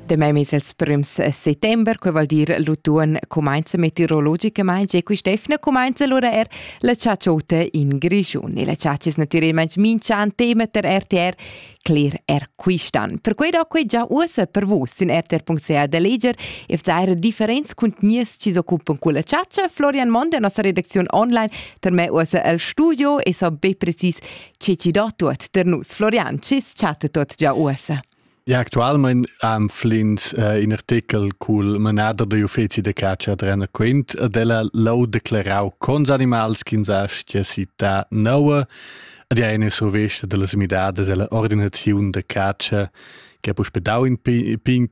Demai mes els prüms settember, que vuol dir l'utuon cumainza meteorologicamaing e quist'efna cumainza lura er la ciaciota in Grischun. E la ciaci es natüralmaing minch'an tema ter RTR cler er quistan. Per quei do quei già uossa per vus in rtr.ch da leger e vzare differents conteniers chi s'occupan culla ciacia. Florian Mond, la nossa redacziun online, per me uossa al studio e so be precis Chi chi do tuot der nus Florian, cis chatta tuot già uossa. Ja, actualment am flint uh, in artikel cul manader da uffizi de caccia ad Renner Quint ad ella l'ho declarau cons animals ch'ins astia città noua ad ja ina survista dellas midadas della ordinaziun de caccia che ha puspedau in pin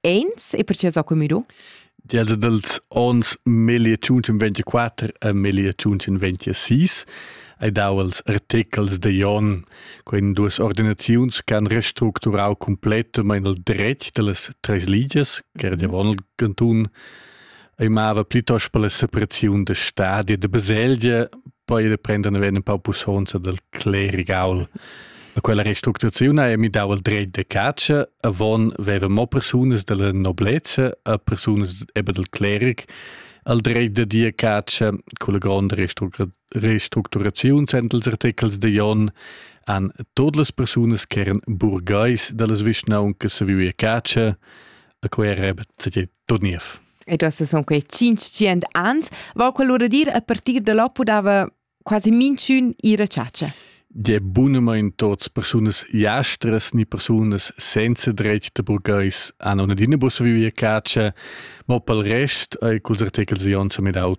Eins e perché so commido? Dials dals ons 1524 a 1526 hai dau als artechels de Jon quen duas ordinaziuns che han restructurau completamain il dretg dallas treis ligias, che era davon il cantun, ei mava plitost per la sepressiun da stadi e da baselgia, poi da prender ne venen pau pusonza del clerigaul. A quella restructurazione è mi dau il dret de caccia, avon veva mo persunas della noblezza a persunas eben del cleric, al dret de dir caccia con la gronda restructurazione sentels articels de Jon an todas las persunas che eran burgais de las vischnauncas se vivia caccia, a quei era Tut niev. E du hast son quei 500 ans, val quell'ora dir a partir da là podava quasi minchun ir a ciacia. De bunamain tots persunas jastras ni persunas senza dretg da burgais hanno una dinabus vivia caccia, ma pel rest ei culs articels ionsa medau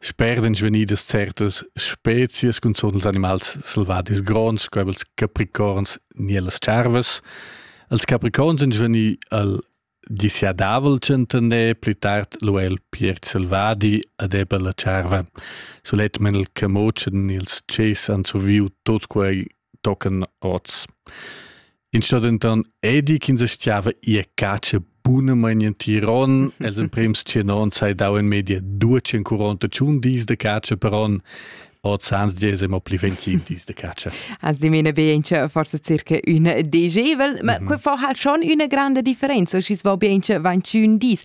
Spert ein svegnidas certas spezias cunzun els animals selvadis gronds, sco els capricorns ni las tscharvas. Els capricorns ein svegni al disiadavel tschentaner, pli tard lu el piert selvadi ed era la tscharva. Sulet men il camotschen ni els tschess han surviu tut quei tochen oz. In sto denton edi ch'ins stiava ir catscha bunamain in Tiron. Els emprems tschenon sai dau in media 241 dis de catscha per on. Oz ans dies emo pli 25 dis de catscha. Also die meine bien che forse circa un degevel, ma mm -hmm. qua fa halt schon una grande differenza, schi va bien 21 dis.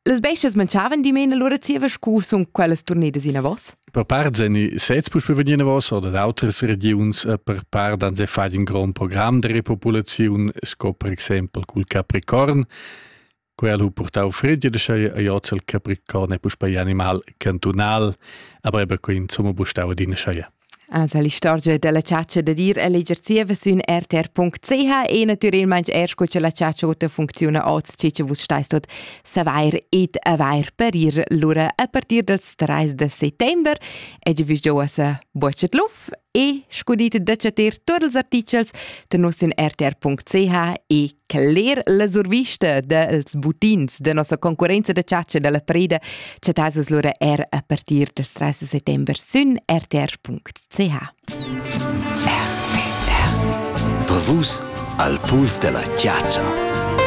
Las bestas mangiavan dimena lura zieva scu sun quellas turnedas inavos? Per part sen sez puspei vegnir vos oder d'autras regions eh, per part han se fai in grand program de repopulaziun sco per exempel cul capricorn quel hu purtau fredje de sei a joz il capricorn e puspei animal cantunal aber eben quei insomma bustau adina sei Also l'istorgia della caccia da dir e leger zieva sün rtr.ch e natüralmaing eir sco cha la caccia ota funcziuna oz, che cha vus stais tot savair ed avair per ir lura a partir dals 3 de settember. E già vus giovas bucet luf e scudite da chatter tuot ils artichels da nos sün rtr.ch e Cler la survista dels buttins da nossa concurenza da chatscha dalla preda chattasas lura er a partir del 13 settember sün rtr.ch. Per vus al puls della chatscha.